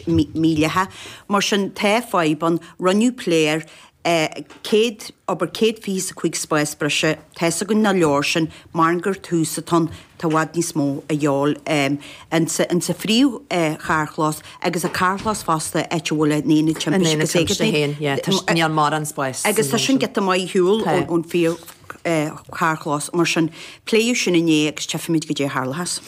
míleata. Mar sin tá fadhb ann. Rinneadh plé air. 100, abair céad fiche is a cúig spás breise. Tá's againn nach leor sin. Maram gur tús atá ann tá i bhfad níos mó a dhíobháil anseo insa phríomhcharrchlós agus an carrchlós fosta áit a bhfuil an tAonad Timpiste agus Éigeandála. Níl mórán spáis. Agus tá sin giota maith ar shiúl ón phríomh. carrchlós mar sin. Pléadh sin inné agus tchífimid goidé a tharlóchas.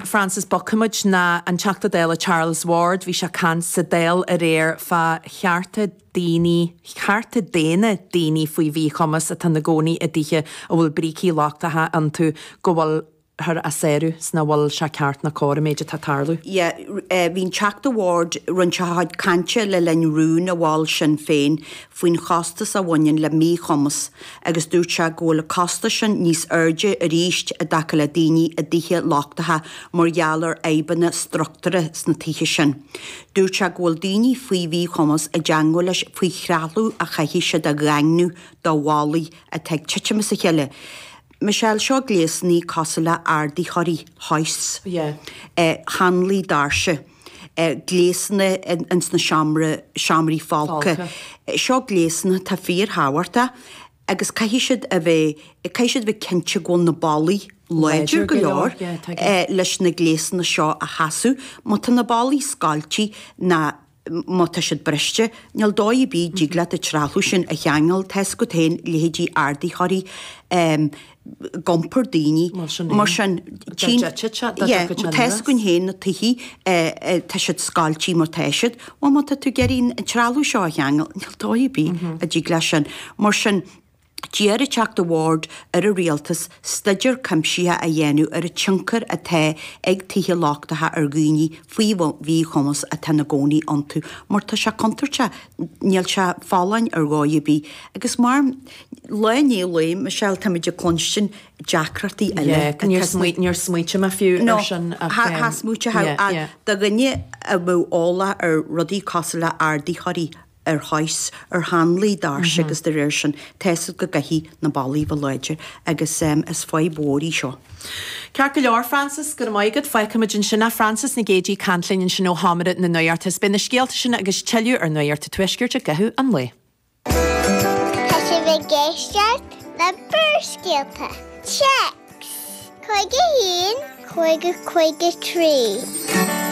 Frances bogfaimid 'na an Teachta Dála Charles Ward bhí sé ag caint sa Dáil aréir fá chearta daoine, cearta daonna daoine faoi mhíchumas atá 'na gcónaí i dtithe a bhfuil brící lochtacha iontu go bhfuil thar á sárú 's nach bhfuil sé ceart ná cóir an méid atá ag tarlú. yeah bhí an Teachta Ward ag roinnt a chuid cainte le linn rún a mhol Sinn Féin faoin chostas a bhaineann le míchumas agus dúirt sé go bhfuil an costas sin níos airde arís i dtaca le daoine i dtithe lochtacha mar gheall ar fhadhbanna struchtúrtha sna tithe sin dúirt sé go bhfuil daoine faoi mhíchumas i dteangmháil leis faoi threalamh a chaithfidh siad a dhaingniú do bhallaí atá ag titim as a chéile Michelle seo gléasannaí cosúil le ardaitheoirí hoists eh hanlaí doirse eh gléasanna eh ins na seomra seomraí folctha eh seo gléasanna atá fíorthábhachtach agus caithfidh siad a bheith caithfidh siad a bheith cinnte go bhfuil na ballaí láidir go leor eh leis na gléasanna seo a sheasamh má tá na ballaí scoilte ná má tá siad briste, níl dóigh ar bith, a dtig leat an trealamh sin a cheangal, tá 'fhios agat féin leithéidí ardaitheoirí, ag iompar daoine mar sin, tchím, yeah, tá 'fhios againn féin na tithe, eh, tá siad scoilte mar tá siad, bhuel má tá tú ag iarraidh an trealamh seo a cheangal, níl dóigh ar bith a dtig leat sin, mar sin, D'iarr an Teachta Ward ar an Rialtas stuidéar cuimsitheach a dhéanamh ar an tionchar atá ag tithe lochtacha ar dhaoine faoi mhíchumas atá ina gcónaí iontu mar tá sé contúirteach, níl sé folláin ar dhóigh ar bith agus mar Lá i ndiaidh lae, Michelle, táimid ag cluinstin deacrachtaí eile Yeah, atá níor sna. níor smaoitigh mé fiú No, ar sin ach tha- tha em, smaoitigh yeah, ach yeah. do dhuine a bheadh eolach ar rudaí cosúil le ardaítheoirí, ar hoists, ar hanlaí doirse, agus dá réir sin, tá's agat go gcaithfidh na ballaí a bheith láidir, agus is fadhb mhór í seo. Ceart go leor, Frances, go raibh maith agat. Fágfaimid ansin é, Frances Nic Géadaigh ag caint linn ansin ó sheomra na nuachta is beidh na scéalta sin agus tuilleadh ar Nuacht an Tuaiscirt i gcaitheamh an lae. Tá sibh ag éisteacht le Barrscéalta, text, 51, 50, 53.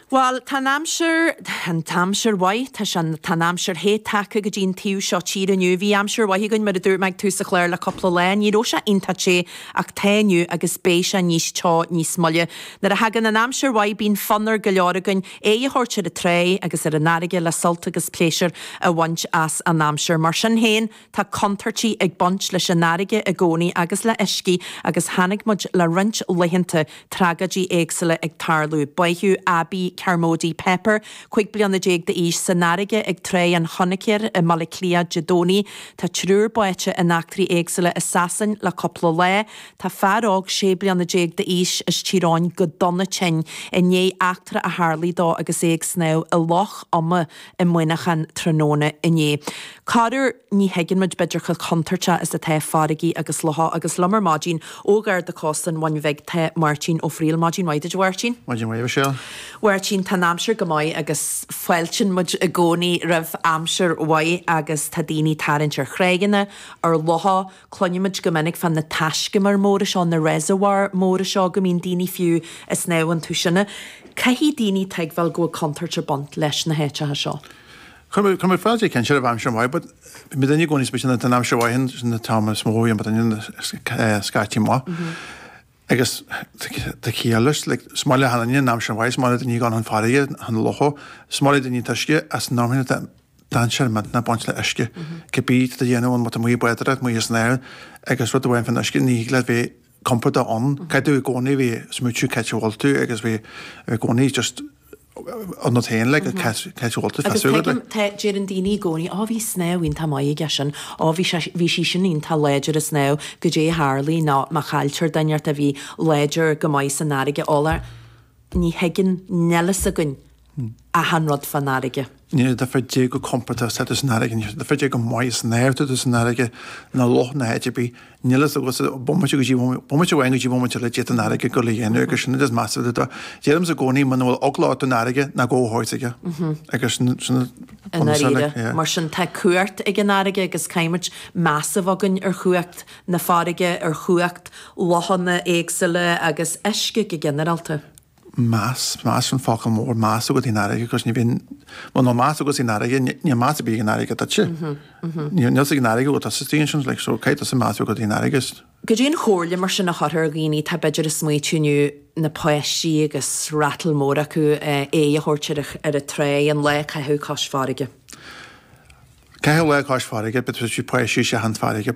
Bhal, tá an aimsir, an aimsir mhaith, tá, tá an aimsir the tagtha go dtí an taobh seo tíre inniu. Bhí aimsir mhaith againn, mar a dúirt mé ag tús an chláir, le cúpla lá. Ní raibh sé iontach te ach tá inniu agus beidh sé níos teo níos moille. Nuair a thagann an aimsir mhaith bíonn fonn ar go leor againn aghaidh a thabhairt ar an tráigh agus ar an fharraige le sult agus pléisiúr a bhaint as an aimsir. Mar sin féin. Tá contúirtí ag baint leis an fharraige i gcónaí agus le huiscí agus chonaic muid le roinnt laethanta tragóidí éagsúla ag tarlú. Báitheadh Abbie Carmody-Pepper, 15 bliana d'aois, san fharraige ag Tráigh an Choinicéir i mBaile Átha Cliath Dé Domhnaigh. Tá triúr báite in eachtraí éagsúla i Sasain le cúpla lá. Tá fear óg 16 bliana d'aois as Tír Eoghain go dona tinn i ndiaidh eachtra a tharlaigh dó agus é ag snámh i Loch Ioma i Muineachán tráthnóna inné. Corruair ní thuigeann muid b'fhéidir chomh contúirteach is atá farraigí agus locha agus liom ar maidin ó Gharda Cósta an Bhuin Bhig tá Máirtín Ó Fríl. Maidin mhaith duit a Mháirtín. Maidin mhaith a Mhichelle. Mháirtín, tá an aimsir go maith agus fáiltíonn muid i gcónaí roimh aimsir mhaith agus tá daoine ag tarraingt ar thráigheanna, ar locha, Cluinimid go minic fá na taiscumair móra seo, na reservoir móra seo, go mbíonn daoine fiú ag snámh iontu sin. Caithfidh daoine tuigbheáil go bhfuil contúirt ag baint leis na háiteacha seo. Cuireann muid fáilte cinnte roimh aimsir mhaith but bíonn daoine i gcónaí, bíonn an aimsir mhaith sin an t-am is mó a bhíonn, but an scaití maith. Agus tá ciall leis. Like, is maith le hachan duine an aimsir mhaith, is maith le daoine a ghabháil chun farraige, chun locha, is maith le daoine an t-uisce, ach san am sin tá dainséar millteanach ag baint le uisce. Cibé atá tú a dhéanamh ann, má tá tú amuigh ag bádóireacht, amuigh ag snámh agus rud amháin faoin uisce, ní thig leat bheith compordach ann. Caithfidh tú i gcónaí bheith, ag smaoitiú cá háit a bhfuil tú agus bheith i gcónaí just. an rud féin le go cait bhóta fé Agus súgad le. tuigim, tá, déireann daoine i gcónaí, Ó, bhí snámh iontach maith aige sin, Ó, bhí sé, bhí sí sin iontach láidir ag snámh, goidé a tharlaigh nó má chailltear duine inteacht a bhí láidir go maith san fharraige, Ola, ní thuigeann, níl fhios againn achan rud fán fharraige. Níl a difear dé chomh compordach is atá tú san fharraige, níl a difear dé chomh maith ag snámh atá tú san fharraige, nó loch nó áit ar bith, Níl fhios agat ó bhomaite go dtí bomaite amháin go dtí bomaite eile goidé tá an fharraige ag dul a dhéanamh agus sin an rud is measa de do. Deirimse i gcónaí muna bhfuil eagla ort don fharraige ná gabh thart aige agus sin I ndáiríre. Mar sin tá cumhacht ag an fharraige agus caithfimid meas a bheith againn ar chumhacht na farraige, ar chumhacht lochanna éagsúla agus uisce go ginearálta. meas, meas an focal mór, meas agat ar an fharraige agus ní bhíonn muna meas agat ar an fharraige níl meas ar bith ag an fharraige duitse. Níl fhios ag an fharraige cé tá istigh ansin like so caithfidh tusa meas agat ar an fharraige agus. Goidé an chomhairle mar sin a chuirfeá ar dhaoine atá b'fhéidir ag smaoitiú inniu na páistí agus rattle mór acu eh aghaidh a thabhairt ar an ar an tráigh nó lá a chaitheamh cois farraige. Caitheamh lá cois farraige but tá sí páistí chun farraige.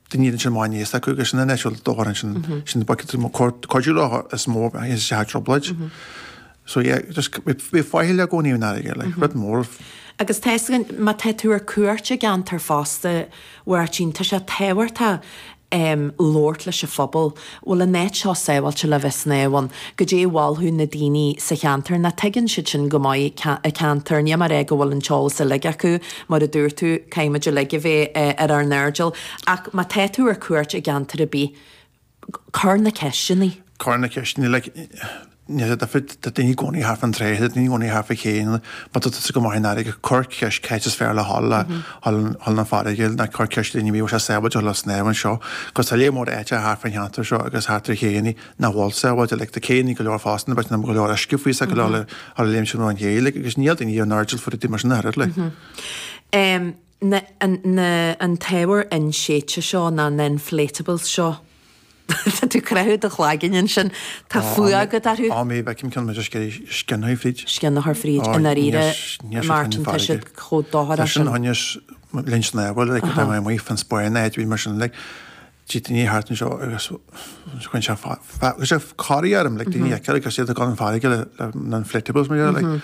Duine iad ansin má bhíonn a fhios acu agus sin an eitilt do bharr sin sin buice tú mo cóir cuidiú leat is má tá tú i dtrioblóid. So yeah just bí faichilleach i gcónaí san fharraige le rud mór. Agus tá a fhios againn má tá tú ar cuairt i gceantar fosta Mháirtín tá sé tábhachtach labhairt leis an phobal bhfuil an áit seo sábháilte le bheith ag snámh ann, goidé a mholfadh na daoine sa cheantar nó tuigeann siadsan go maith an ceantar, ní mar é go bhfuil an t-eolas uilig acu, mar a dúirt tú, caithfimid uilig a bheith ar ár n-airdeall. Ach má tá tú ar cuairt i gceantar ar bith, cuir na ceisteanna. Cuir na ceisteanna, like. Níl aon difear, tá daoine i gcónaí thart fán tráigh, tá daoine i gcónaí thart fá chéanna, má tá tusa ag gabháil amach san fharraige, cuir ceist cá háit is fearr le ghabháil a ghabháil chun na farraige nó cuir ceist ar dhaoine an bhfuil sé sábháilte a dhul ar snámh anseo, agus tá lear mór áiteacha thart fán cheantar seo agus thart ar chéannaí nach bhfuil sábháilte, like tá céannaí go leor fosta na beirt na go leor uisce faoi sa go leor le ghabháil a léimní ón ché, like agus níl daoine ar a n-airdeall faoi rudaí mar sin a oiread like. Na, na, an t-ábhar inséidte seo, na, na inflatables seo. Tá tú ag croitheadh do chloiginn ansin. Tá fuath agat orthu. Á, má fheicim ceann amuigh, an scian fríd. Scian fríd? I ndáiríre, Martin, tá siad chomh contúirteach sin. Tá sin honestly sin ábhar, like, tá mé amuigh fán Spáinn nó áit ar bith mar sin, like, tchí daoine thart anseo agus cuireann sé fáth, cuireann sé corraí orm, like, daoine a fheiceáil agus iad ag gabháil chun farraige le na inflatables mar dhéanamh, like.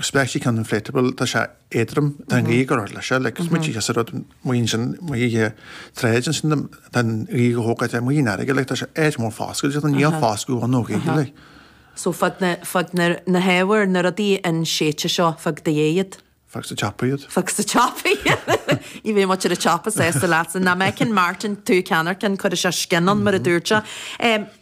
Specially an inflatable, tá sé éadrom, tá an ghaoth orthu leis seo, is muid ag iascadh rud maoin sin, amuigh ón tráigh ansin, tá an ghaoth á thógáil é, amuigh ar an fharraige, tá sé éadrom ón fáscailt, tá an ghaoth ón fáscadh ón ghaoth. So fág na hábhair, na rudaí inséidte seo, fág i do dhiaidh iad? Fág sa tsiopa iad. Fág sa tsiopa iad. Ní bheidh lucht an tsiopa sásta leatsa. Má fheiceann Martin tú ag ceannacht ceann, cuirfidh sé scian ann, mar a dúirt sé.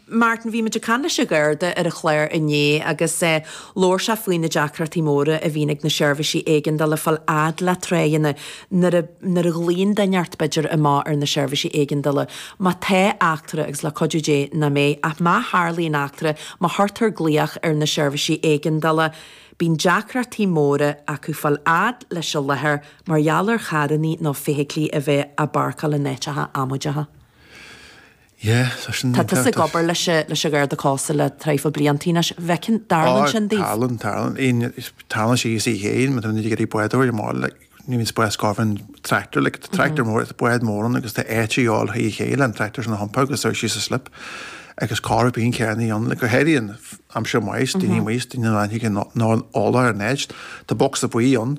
Martin, bhí muid ag caint leis an Gharda ar an chlár inné agus labhair sé faoi na deacrachtaí móra a bhíonn ag na seirbhísí éigeandála fáil fhad le tráigheanna nuair a, nuair a ghlaonn duine inteacht b'fhéidir amach ar na seirbhísí éigeandála má tá eachtra agus le cuidiú Dé nach mbeidh ach má tharlaíonn eachtra má chuirtear glaoch ar na seirbhísí éigeandála bíonn deacrachtaí móra acu fáil fhad leis an láthair mar gheall ar charrannaí nó feithiclí a bheith á bpáirceáil in áiteacha amaideacha. Yeah, tá sin. Tá tusa ag obair leis an Gharda Cósta le traidhfil bliantaí anois. An bhfeiceann, an dtarlann sin daoibh? Tarlann, tarlann. Tarlann sé ag céanna, mar tá muid ag iarraidh báid a thógáil le, níl aon spás go bhfaighfinn tractor, like tá tractor mór, tá bád mór ann agus tá áit a dhíobháil ar an ché leis an tractor sin a thiompú agus dul síos an slip agus corruair bíonn carrannaí ann, like go háirid in aimsir mhaith, daoine amuigh, daoine nach bhfuil eolach ar an áit, tá bocsa buí ann.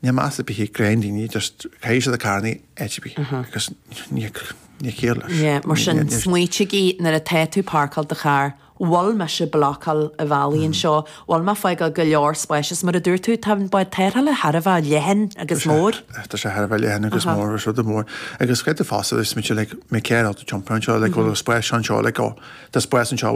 Níl meas ar bith ag go leor daoine, just caithfidh siad an carr in áit ar bith, agus níl ciall leis. Yeah, mar sin, smaoinígí nuair atá tú parcáil do charr, bhfuil mise blocáil an bhealaigh anseo, bhfuil mé fágáil go leor spáis, is mar a dúirt tú, tá an bád tarrthála thar a bheith leathan agus mór. Tá sé thar a bheith leathan agus mór, is rud an mhór, agus creid tú feasta, is mise like, mé céard atá ag tiompu anseo, like bhfuil spáis anseo, like oh, tá spáis anseo.